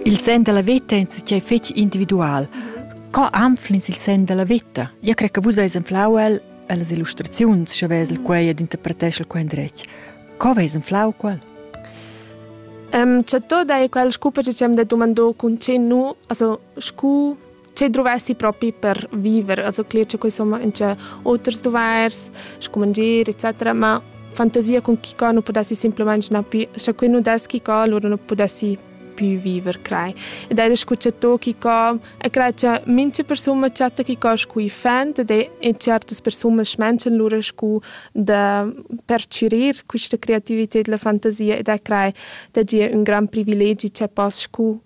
Il sen dalla veta è insatgei fetg individual. Co anflins il sen dalla veta? Io cre che vus veis anflau el ellas illustraziuns, sche vesel quei ed interpreteschel quei endretg. Co veis anflau quel? Um, cioè, tu dai quel scupa che ci abbiamo detto mandò con ce nu, also scu che dovessi propi per viver, also cler che insomma in c'è outers dovairs, scumangir, etc. Ma fantasia con chi co non potessi semplicemente na più, se qui non des chi co allora non potessi più viver, crei. Ed è escucciato chi co e crei che mince persone chatta chi co scui fent ed è in certe persone schmenchen lura scu da percirir questa creatività e la fantasia ed è crei da gia un gran privilegi che poss scu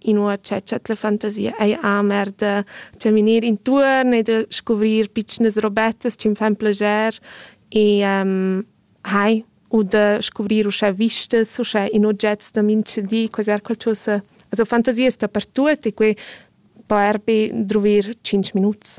inua cha dschet la fantasia ei amer da caminir intuorn e da scuvrir pitschnas robettas chi fan plager e um, hai u da scuvrir uschè vistas, uschè in ogets da mintgadi, quasi er qualcosa. Also fantasia sta per tuot e quei po er be druvir 5 minuts.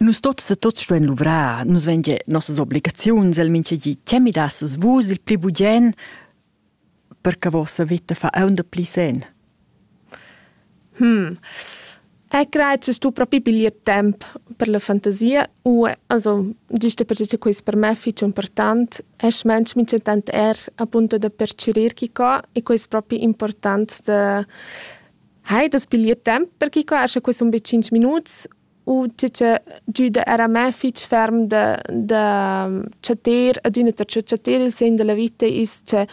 Nus tots e tots stuein luvrar, nus vein gia nossas obligaziuns, el mintga di. Tgei mi dasses vus il pli bugen per che vossa veta fa aunc pli sen? Hmm. Ei creitschas tu propi piglier temp per la fantasia? U, also, giusto perche che quest per me fich important, es mensch mincha tant er appunto da perchürir chi co e quest propi important da hai das piglier temp per chi coscha quei sun be 5 minuts u tge che giuda era me fitg ferm da, da chatter ad üna ta chatter il segn della vita is che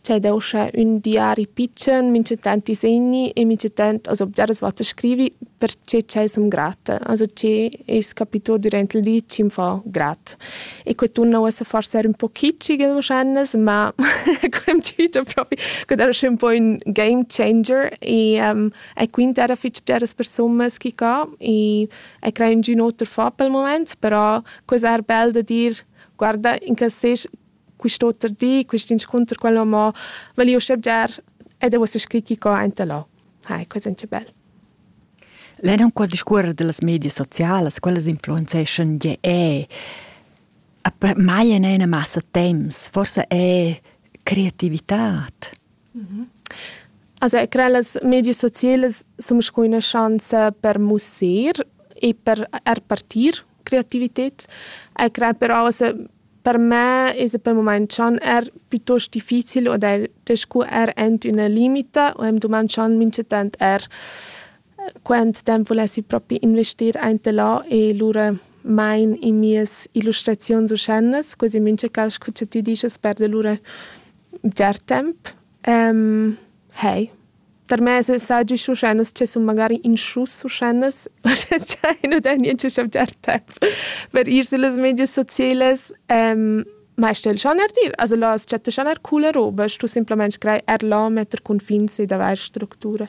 c'è da usche ün diari pitschen, minchatant ti segni e minchatant as obgiaras wat a scrivi perche ch'ei som grata, also che es capito durant il di chi'm fa grat. e que tunna uossa forsa er un po kitschigel wahrscheinlich, ma quemt hüter propi, que era schön un po ün game changer e um, e quint era fich bgeras persunas chi ca e e crein giün oter fà pel mumaint, però quesa er bel da dir guarda in cas sez quist'oter di, quist'inscunter, quello mo, völi uschè bger ed e uossa scri chi ca aint da là. Hai, quesa è bel. Lein aunc discuorer dallas medias socialas, quellas influenzeschan gie eh. A per mai en ina massa temps, forsa è creativitad. Also ich credo, las medie sociali sono una chance per musser e per er partir creativität. Ich credo però also, Per me esa pel mumaint schon eir pituost difficil od eir scu er ant üna limita u am dumand schon minchatant eir quant temp vulessi propi investir aint e là e lura main in mias illustraziuns uschènas, quasi mincha cas scu cha tü dischast perda lura bger temp. Hey. Tarmez saji schuschennas che sun magari in schus schuschennas, uschè nu dà niente chavgiar temp per ir süllas medias socielas. ma sta'l schaner dir, also là as chatta schaner coola roba, stu simplamaing scrair er là metter cunfins ed avair structura.